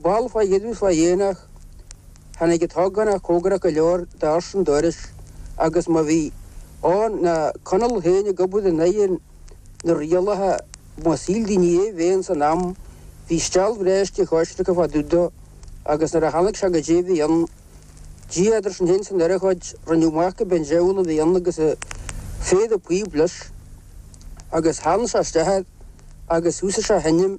Bhail fá dheireadh fá dhéanach, tháinig an t-ógánach comhgarach go leor d'ursain an dorais agus má bhí ann ná Conall féin ag obair in aghaidh na rialacha má shíl daoine é bheith san am bhí steall bhreá uisce choisreacan fá dtaobh dó agus nuair a tháinig sé go dtí bhí an Dia idir sinn féin is an urchóid rinneadh amach gurb é an diabhal a bhí ann agus péire píob leis agus theann sé isteach air agus thúsaigh sé a sheinm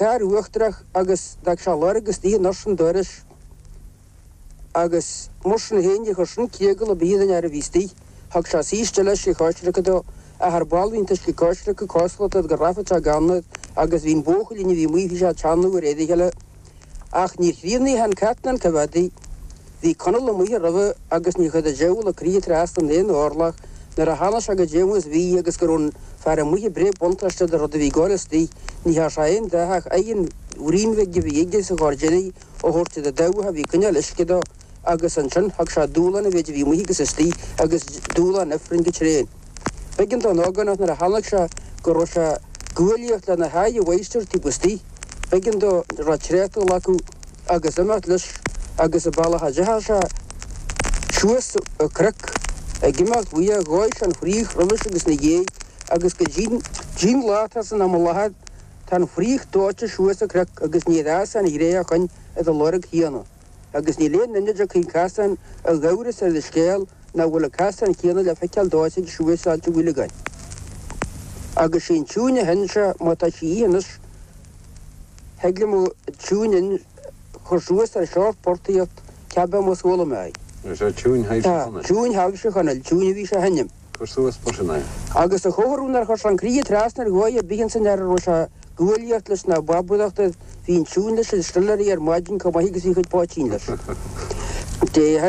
cár uachtarach agus d'fhág sé lorg istigh in ursain an dorais agus mar sin féin níor chuir sin eagla ar bith ar an fhear a bhí istigh. Thug sé steall uisce coisreactha dó, athair ball líonta uisce coisreactha, cosúlacht, agus go rachfad sé gan iad agus bhí an buachaillín a bhí amuigh bhí sé ag teannadh air de réir a chéile. Ach níor críochnaíodh an cartlann go mhadaí. Bhí Conall amuigh roimhe agus níor chuir an diabhal an croí trasna ann aon orlach nuair a tháinig sé go dtí amuigh is bhí agus go raibh an fear amuigh ag breith buntáiste de rud a bhí gáire istigh. Ní thearn sé aon dath ach oigheann bhrín bhig a bhí aige sa ghairdín í a thabhairt do do damh a bhí ag coinneáil uisce dó. agus ansin thug sé dúshlán a mhéid a bhí amuigh agus istigh agus dúshlán ifrinn go tréan. B'éigean don ógánach nuair a chonaic sé go raibh sé ag guaillíocht lena mháistir taobh istigh. B'éigean dó retreat a ghlacadh agus imeacht leis agus an bealach a dteachaidh sé suas an cnoc ag imeacht uaidh dhóigh sé an fraoch roimhis agus ina dhiaidh agus go dtí an lá atá san am i láthair tá an fraoch dóite suas an cnoc agus níor fhás sé ariamh ó shin ar an lorg chéanna. agus níl aon duine a tchí an casán in amhras ar an scéal nach bhfuil an casán céanna le feiceáil dóite suas Ailt an Bhuileagáin. Agus sé an tiúin a sheinn sé, má tá sí ionnus, thig liom an tiúin a chur suas ar sheort portaíocht, cibé mar chuala mé í. Tá, tiúin Thaibhse Chonaill, an tiúin a bhí sé a sheinneann. Cur suas mar sin é. Agus a chomhartha nár chuir sé an croí trasna ar dhóigh ar bith ins an fhear a raibh sé ag guaillíocht leis na ba buíochta bhí an tiúin leis an stiléaraí ar maidin chomh maith agus bhí a chuid poitín leis.